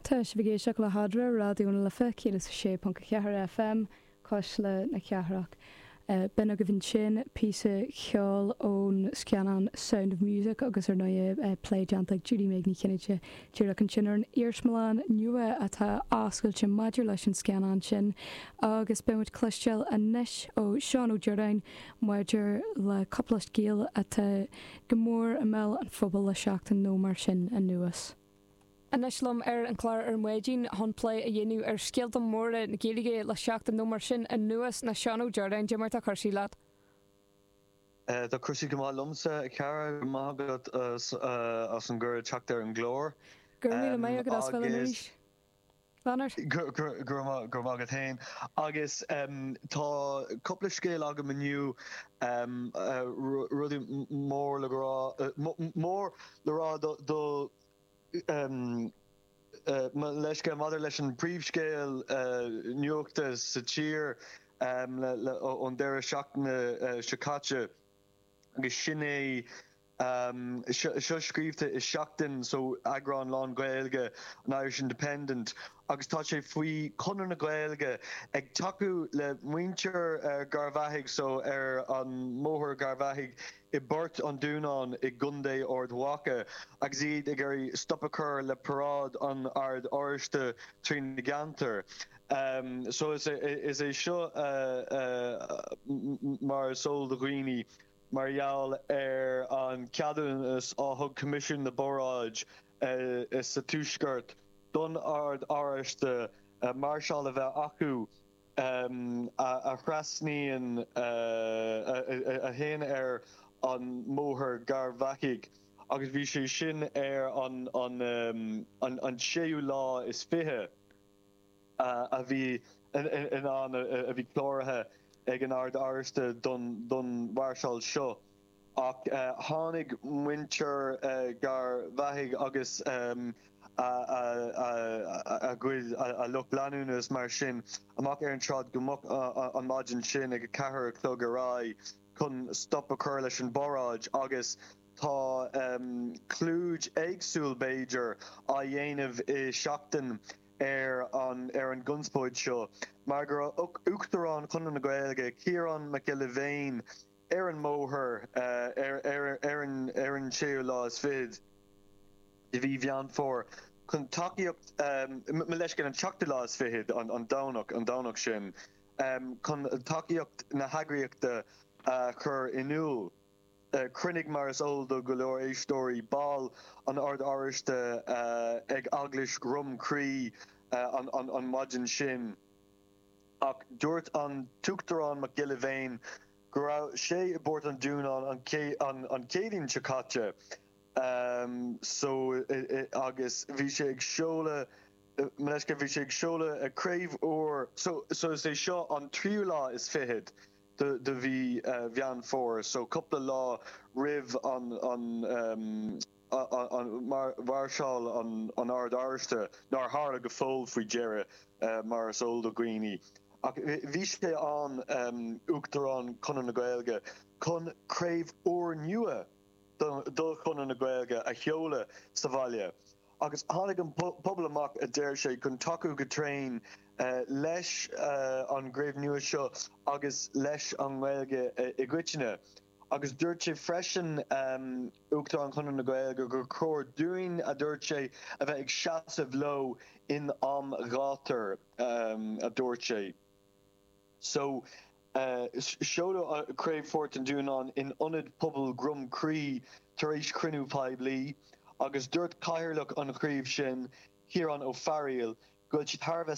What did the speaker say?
Tá sibh ag éisteacht le hAdhradh, Raidió na Life 106.4 FM, Cuisle na Cathrach. B'in agaibh ansin píosa ceoil ón scannán Sound of Music agus ar ndóigh plé déanta ag Judy Meg Ní Chinnéide díreach ansin ar an iarsmalann nua atá oscailte maidir leis an scannán sin agus beidh muid ag cloisteáil anois ó Seán Ó Deoráin maidir le cúpla scéal atá go mór i mbéal an phobail le seachtain nó mar sin anuas. Anois liom ar an gclár ar maidin chun plé a dhéanamh ar scéalta móra na Gaeilge le seachtain nó mar sin anuas ná Seán Ó Deoráin. Cad é mar tá cúrsaí leat? Tá cúrsaí go maith liomsa, a Chiara. Go raibh maith agat as an gcuireadh teacht ar an gclár. Go raibh míle maith agat as do chuid ama a. roinnt linn. Go raibh maith agat féin. Agus tá cúpla scéal agam inniu, rudaí mór le rá, mór le rá do, mo leithscéal, maidir leis an bpríomhscéal nuachta sa tír ón deireadh seachtaine seo caite, agus sin é seo scríobhta i Seachtain so eagrán lán Gaeilge an Irish Independent agus tá sé faoi Chonradh na Gaeilge ag tacú le muintir Gharbhachaidh so ar an mBóthar Gharbhachaidh i bPort an Dúnáin i gContae Ard Mhacha agus iad ag iarraidh stop a chur le paráid an Oird Oráistigh trína gceantar. So is é seo mar is eol do dhaoine Mar gheall ar an gceadúnas a thug Coimisiún na bParáidí sa Tuaisceart don Ord Oráisteach máirseáil a bheith acu a thrasnaíonn a théann ar an mBóthar Garbhachaidh agus bhí sé sin ar an séú lá is fiche a bhí in ann a bhí cláraithe ag an Ord Oráisteach don mhairseáil seo ach tháinig muintir Gharbhachaidh agus a gcuid a lucht leanúna is mar sin amach ar an tsráid go moch an maidin sin ag a ceathair a chlog ar aghaidh chun stop a chur leis an bparáid agus tá clúdach éagsúil b'fhéidir á dhéanamh i Seachtain ar an gconspóid seo mar go raibh Uachtarán Chonradh na Gaeilge, Ciarán Mac Giolla Bhéin, ar an mbóthar ar an séú lá is fichead de mhí Mheán Fómhair chun tacaíocht, mo leithscéal, an tseachtú lá is fichead, an Domhnach, an Domhnach sin, chun tacaíocht na heagraíochta a chur in iúl. Chruinnigh, mar is eol do go leor éisteoirí, baill an Oird Oráistigh ag Eaglais Dhroim Crí an mhaidin sin ach dúirt an tUachtarán Mac Giolla Bhéin go raibh sé i bPort an Dúnáin an Chéadaoin seo caite, so agus bhí sé ag seoladh, bhí sé ag seoladh craobh úr, so is é seo an tríú lá is fiche de mhí Mheán Fómhair, so cúpla lá roimh an mháirseáil an Oird Oráistigh, nár tharla go fóill faoi dheireadh mar is eol do dhaoine. Ach bhí sé ann, Uachtarán Chonradh na Gaeilge, chun craobh úr nua de Chonradh na Gaeilge a sheoladh sa bhaile. agus tháinig an pobal amach, a deir sé, chun tacú go tréan leis an gcraobh nua seo agus leis an nGaeilge i gcoitinne. Agus dúirt sé freisin, Uachtarán Chonradh na Gaeilge, gur chóir dúinn, a dúirt sé, a bheith ag seasamh leo in am gátair, a dúirt sé. So seoladh Craobh Phort an Dúnáin in Ionad Pobail Dhroim Crí tar éis cruinniú poiblí agus dúirt Cathaoirleach an Chraoibh sin, Ciarán Ó Fearaíl, go bhfuil siad thar a bheith